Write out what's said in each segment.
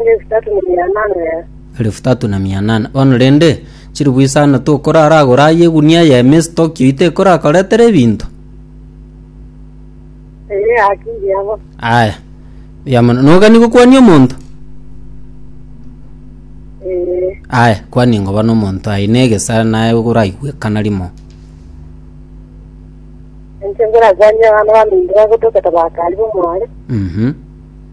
Elifu tatu na mia nane. Elifu tatu na mia nane. Bono rende, chiribu isano tokoraragora aye egunia y'emesi Tokyo itekorakoretere ebinto? Eye haki ndiabo. Aya. Buya mono. Nogani gokwania omonto? Ee. Aya, kwania ngoba n'omonto aye negesa naye oraigwekana rimo. Enche ngorakwania abana baminto bagotoketa bakari bomware. Mhm.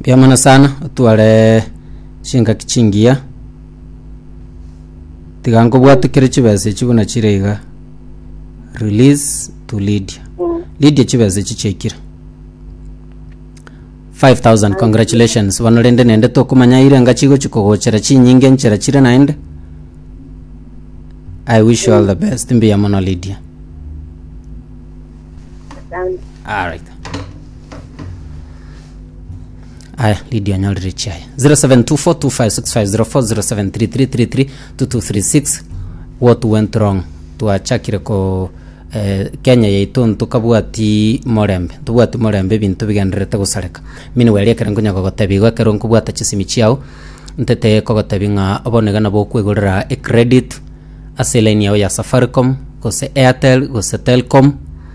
Mbuya mono sana otware chingaki chingiya tiga nkobwate kere chibesa echi buna chire iga release to lydia lydia chibesa echi chiaikire 5000 congratulations bono rende nende tokomanya ire engachi igochi kogochera chinyinge enchera chire naende i wish you all the best mbuya mono lydia Asante. alright aya lidio anyorire chiaye 0724256504 0733332236 what went wrong twachakire ko eh, kenya yaito ntukabwati morembe ntubwati morembe ebinto bigendererete gosareka mini weri ekero nkonya kogotebi igo ekero nkobwata chisimi chiao ntete kogotebi ng'a obonegena bokwegorera ecredit ase elaini yao ya safaricom gose airtel gose telcom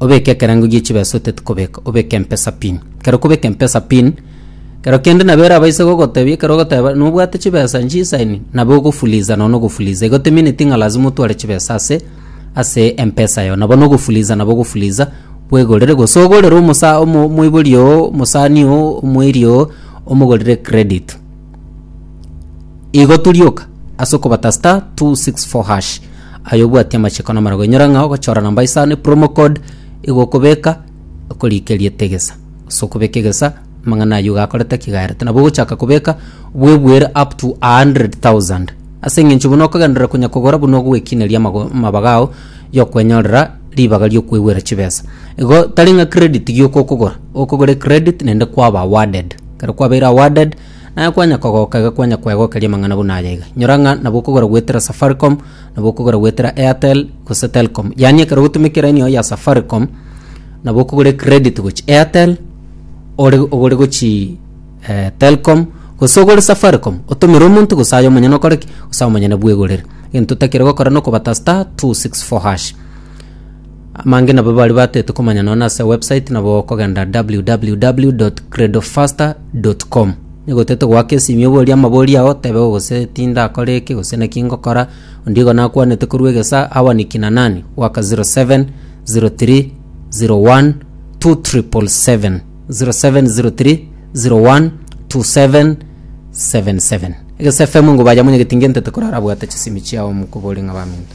obeke ekerengo gie chibeesa oteti kobeka, obeke empesa pin. Ekero okobeka empesa pin, ekero kende nabo eraba ise gogotebia, ekero ogoteba nobwate chibeesa nchisaini, nabo ogofuliza nonya na ogofuliza. Igo temineti ng'a lazima otware chibeesa ase ase empesa yago. Nabo na ogofuliza nabo ogofuliza bwegorere, gose ogorere omosa omo omoibori oo, omosani oo, omweiri oo, omogorere credit. igo turioka ase okobata star 264 hash ayo obwati amachiko na amarago inyora ng'a ogochora namba isano epromo code igo okobeka okorikeria etegesa ase okobeka egesa amang'ana aywo gakorete ki gaerete nabo ogochaka kobeka bwebuere up to 100000 ase eng'encho buna okogenderera konya kogora buna ogoekineria amago amabaga ao ya okwenyorera ribaga ria okwegwera chibesa igo tari ng'a credit gioka okogora okogora ecredit naende kwaba awarded. Ekero kwabeire awarded, naye kwanya kogoka iga kwanya kwegokeria amang'ana buna aya iga. Nyora ng'a nabo okogora goetera Safaricom, nabo okogora goetera Airtel, gose Telcom. Yaani ekero ogotumeka eraini yago ya Safaricom, nabo okogora ecredit gochia Airtel, ore ogore gochii Telcom, gose ogore Safaricom, otomere omonto gose aye omonyene okore ki? Gose aye omonyene bwegorere. Egento otakeire gokora nokoba ta star, two, six, four hash. Amange nabo bari batete komanya nonya ase website nabo okogenda www.credofaster.com nigotete goaka esimi oboria amabori ao tebe gose tinda akore eke gose naki ngokora ondigo nakwanete korwa egesa awa ni kina nani goaka 07 03 01 2777 0703 01 2777 egesa fm ngobayamonye getinge ntete korara abwate chisimi chiao mokobore ng'a baminto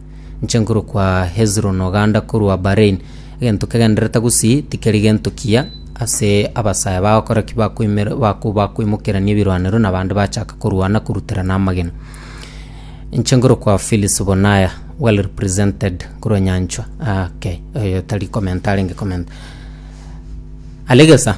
Inche nkorokwa Hezron oganda korwa Bahrain. Egento kegendererete gusii tikeri gento kiya ase abasaya bagokora ki bakoimera bako bakoimokerania ebirwanero na bande bachaka korwana koruterana amagena. Inche nkorokwa Phyllis Bonaya well represented korwa Nyanchwa ah, okay oyo tari comment arenge comment. Alegesa.